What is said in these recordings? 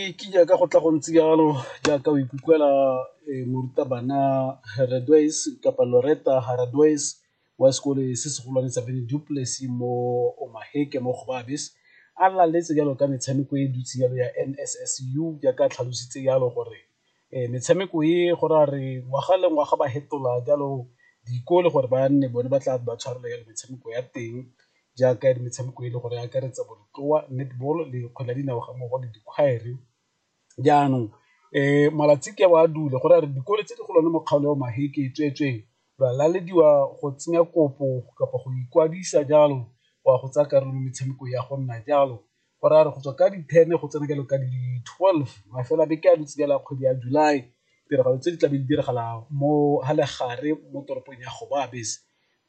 Ee, ke jaaka go tla go ntse jalo jaaka o ikutlwela morutabana Harredwys kapa Loretta Harredwys wa sekole se se golwane sa Benny Duplex mo Omaheke mo go Babes a laletse jalo ka metshameko e dutse jalo ya N_S_S_U jaaka a tlhalositse jalo gore metshameko e go ra re ngwaga le ngwaga ba fetola jalo dikolo gore ba nne bone ba tla ba tshwarelwa jalo metshameko ya teng jaaka metshameko e le gore e akaretsa bolotloa, netball-o le kgwele ya dinao ga mmogo le dikhwaere. Jaanong malatsi ke a bo a dule go ra re dikolo tse di golwane mo kgaolong ya bo Maheke tsweetswee lo a lalediwa go tsenya kopo kapa go ikwadisa jalo go ya go tsaya karolo mo metshamekong ya go nna jalo. go raya gore go tswa ka di-ten go tsena ka lo ka di-twelve mafela beke a lotsi la kgwedi ya july tiragalo tse di tlabe di diragala mo ga legare mo toropong ya gobabese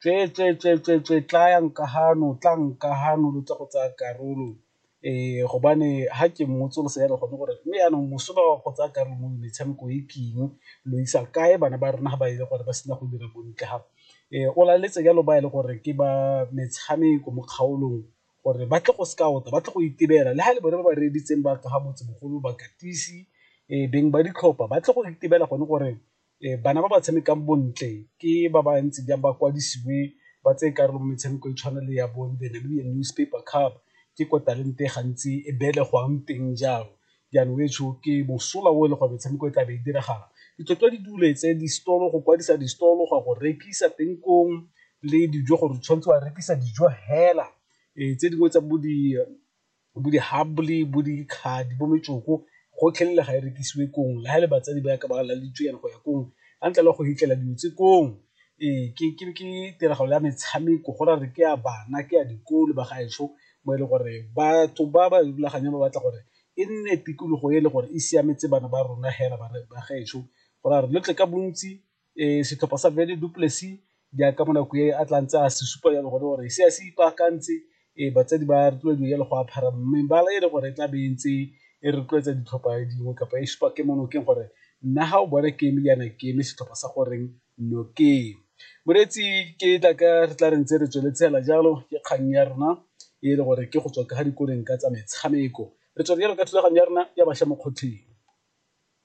tsweetsweetsweetswe tlayang ka gano tlang ka gano lo tsa go tsaya karolo um gobane ga ke mmotse lo seyalo gone gore mme yaanong mosola wa go tsaya karolo mo metshameko e keng lo isa kae bana ba rona ga ba e le gore ba sena go dira bontle ga um o laletse jalo ba e le gore ke ba metshameko mo kgaolong gore ba tle go scout-a ba tle go itebela le ha le bone ba ba reeditseng batho ga motsemogolo bakatisi um beng ba ditlhopha ba tle go itebela gone gore bana ba ba tshamekang bontle ke ba ba ntse jang ba kwadisiwe ba tseye karolo mo metshamekong e tshwana le ya bo newspaper cup ke ko talente gantsi e belegwang teng jalo. Jaanong e tsho ke mosola o e le gore metshameko e tla be e diragala. Ditlhotlhwa di dule tse di stolo go kwadisa di stolo go ya go rekisa teng kong le dijo gore tshwanetse wa rekisa dijo hela um tse dingwe tsa bo di bo di habole bo di kgadi bo metsoko gotlhelele ga e rekisiwe kong le ha le batsadi ba ya ka ba lalitšwe yana go ya kong a ntle le go fitlhela dilo tse kong ee ke tiragalo ya metshameko go ra re ke ya bana ke ya dikolo ba ga etsho mo e le gore batho ba ba rulaganya ba batla gore e nne tikologo e le gore e siametse bana ba rona hela ba gaetsho gore a re lotle ka bontsi um setlhopha sa vele duplessi jaaka mo nako e a tla ntse a se supa jalo gone gore se a se ipaakantse um batsadi ba rotloediwe jalo go aphara mebala e le gore e tla be e ntse e rotloetsa ditlhopha dingwe kapa e supa ke monokeng gore nna ga o bona ke eme jaana ke eme setlhopha sa goreng nokeng moreetsi ke tla ka re tla re ntse re tswele tshela jalo ke kgang ya rona e le gore ke go tswa ka ga dikoleng ka tsa metshameko re tswele jalo ka thulaganyo ya rona ya bašwa mo kgotlheng